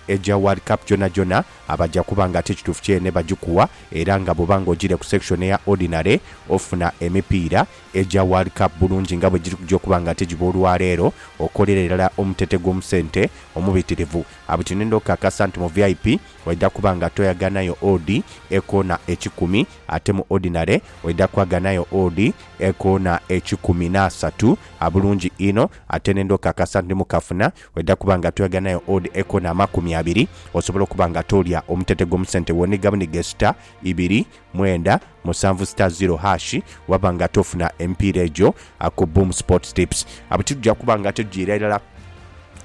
Eja World Cup jonagyona abaja kuba nga ti kituufu kyene bagikuwa era nga bwoba nga ojiire ku section eya Ordinary ofuna emipiira eja World Cup bulungi nga bwegiri kuja okuba nga tigiba olwaleero okolera irala omutete gw'omusente omubitirivu awo kino ndokukakasa nti mu VIP oidha kuba nga toyaganayo odi ekoona ekikumi ate mu Ordinary oidha kwaganayo odi ekoona ekikumi n'asatu bulungi inho ate nendokukakasa nti mukafuna Bwedha kuba nga tweghanayo odd echo na makumi abiri, osobola okuba nga tolya omutete gwo mu sente woniga buniga star ibiri mwenda musanvu star zero hash waba nga tofuna emipiira egyo ku Boom Sports Tips. Abo titugya kuba nga tugyiira irala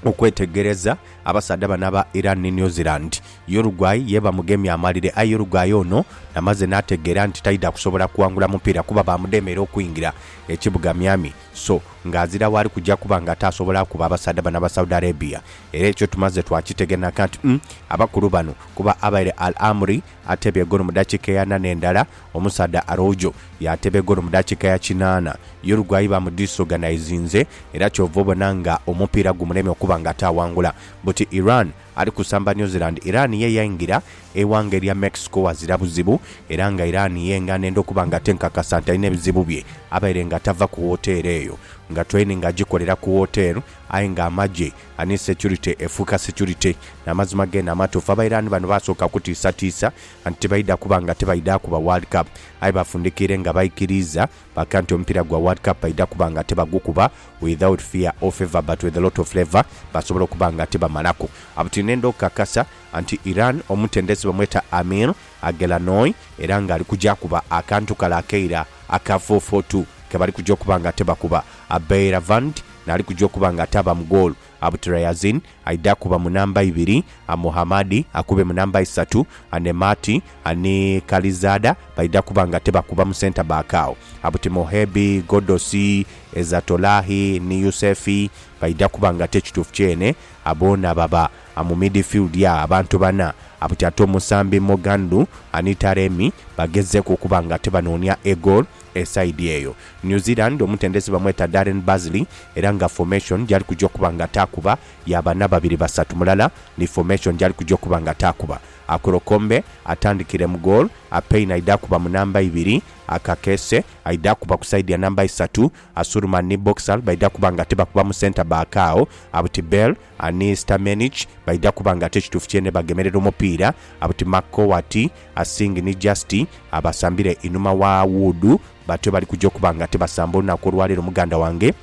okwetegereza abasaadha bano aba Iran ni New Zealand. Uruguay ye bamugemye amalire aye Uruguay ono namaze nategeera nti taidha kusobola kuwangula mupiira kuba baamudemeera okwingira ekibuga Miami. so nga azira waali kuja kuba nga ataasobola kukuba abasaadha bano aba Saudi Arabia era ekyo tumaze twakitegenaka nti umm abakulu bano kuba abaire Al Amri ateeba egolo mu dakiika eya nana endala omusaadha Araujo yaateeba egolo mu dakiika ya kinaana Uruguay ba mu disorganizinze era kyova obona nga omupiira gumulemye okuba nga ataawangula but Iran Ali kusamba New Zealand, Iran ye yaingira eighanga erya Mexico ghazira buzibu era nga Iran ye ng'anenda okuba nga tenkakasa nti alina ebizibu bye abaire nga tava ku woteeri eyo nga training agikolera ku woteeri aye nga amagye ani securite efuuka securite n'amazima geene amatuufu. Abairani bano baasooka kutiisatiisa nti tibaidha kuba nga tibaidha kuba World Cup aye bafundikiire nga baikiriiza. Baga nti omupiira gwa World Cup baidha kuba nga tibagukuba without fear or favour but with a lot of flavour basobola okuba nga tibamalaku. Abo tinhenda okukakasa nti Iran omutendesi bamweta Amir Aghelanoi era nga ali kuja kuba akantu kale akeira aka four-four-two kebali kuja okuba nga tibakuba. Abeiravand n'ali kuja okuba nga ataaba mu goolo. Abutirayaziin Aidha kuba mu namba ibiri, Amuhamadi akube mu namba isatu, Anemati ni Kalizaada baidha kuba nga tibakuba mu senta baaka agho. Abutimohebi, Godosi, Ezatolahi ni Yusefi baidha kuba nga ti ekituufu kyene, boona baba mu midifildi agho. Abantu bana buti ate omusambi Mogandhu ni Taremi bagezzeeku okuba nga tibanoonia egoolo. E side eyo New Zealand omutendesi bamweta Darren Bazley era nga formation gyali kuja okuba nga taakuba ya bana babiri basatu mulala ni formation gyali kuja okuba nga taakuba. Akolokombe atandikire mu goal, Apei naidha akuba mu namba ibiri, Akakese aidha akuba ku side ya namba isatu, Asurman ni Boxall baidha kuba nga tibakuba mu centre back agho Abtbel, Ani Stamenic baidha kuba nga kyo kituufu kyene bagemerera omupiira but Mark Cowatt, Asing ni Justy abasambira einhuma wa Wood batyo bali kuja okuba nga tibasamba olunaku olwaleero muganda wange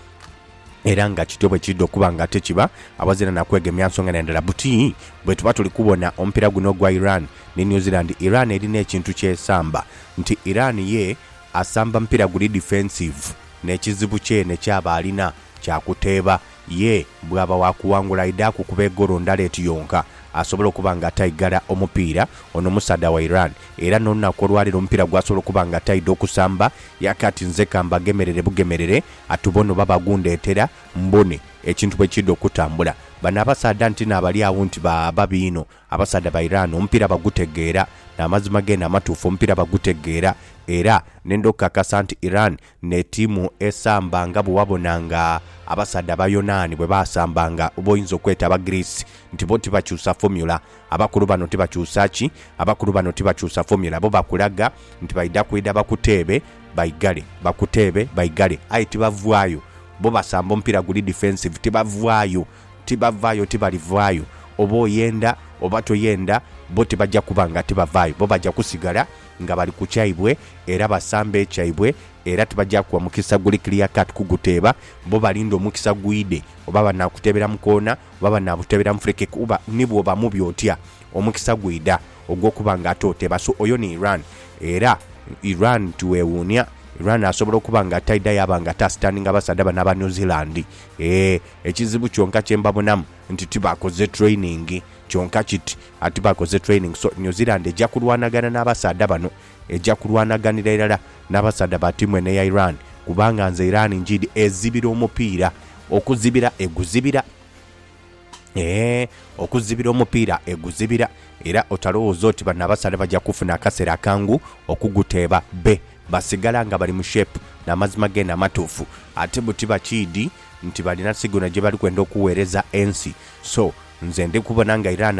era nga kityo bwekiidha okuba nga tekiba awazira na kwegemya nsonga na ndala but bwetuba tuli kubona omupiira guno ogwa Iran ni New Zealand Iran erina ekintu kyesamba nti Iran ye asamba mupiira guli defensive n'ekizibu kyene kyaba alina kya kuteeba Ye bw'aba wa kuwangula aidhaku okuba egolo ndhala eti yonka asobola okuba nga ataigala omupiira ono omusaadha wa Iran era n'olunaku olwaleero omupiira gwasobola okuba nga ataidha okusamba ya kati nze ka mbagemerere bugemerere atube ono baba agundheetera mbone ekintu bwe kiidha okutambula. Bano abasaadha nti naabali agho nti ba babi inho abasaadha ba Iran omupiira bagutegeera n'amazima geene amatuufu omupiira bagutegeera era nendha okukakasa nti Iran Ne tiimu esamba nga bwe wabona nga abasaadha Abayonaani bwe baasambanga, b'oyinza okweta Abagriisi, nti bo tibakyusa fomula. Abakulu bano tibakyusa ki? Abakulu bano tibakyusa fomula. Bo bakulaga nti baidha kwidha bakuteebe baigale, bakuteebe baigale. Aye tibavaayo. Bo basamba omupiira guli defensive, tibavaayo. Tibavaayo, tibalivaayo. Oba oyenda oba toyenda, bo tibaja kuba nga tibavaayo. Bo baja kusigala nga bali ku kyaibwe, era basambe ekyaibwe, era tibaja kuwa mukisa guli clear cut kuguteeba. Bo balinde omukisa gwidhe, oba banaakuteebera mu koona, oba banaabuteebera mu free kick, kuba ni bwoba mubi otya, omukisa gwidha ogw'okuba nga ate oteeba. So oyo ni Iran. Era Iran tiwewuunia, Iran asobola okuba nga ataidha yaaba nga ate asitandinga basaadha bano aba New Zealand. Eeh. Ekizibu kyonka kye mbabonamu nti tibakoze training kyonka kiti ati bakoze training so New Zealand eja kulwanagana n'abasaadha bano eja kulwanaganira irala n'abasaadha ba tiimu eno eya Iran kubanga nze Iran njiidi ezibira omupiira okuzibira eguzibira eeh okuzibira omupiira eguzibira era otalowooza oti bano abasaadha baja kufuna akaseera akangu okuguteeba be basigala nga bali mu shape n'amazima geene amatuufu ate buti bakiidi nti balina sigino gyebali kwenda okuwereza ensi so nze ndikubona nga Iran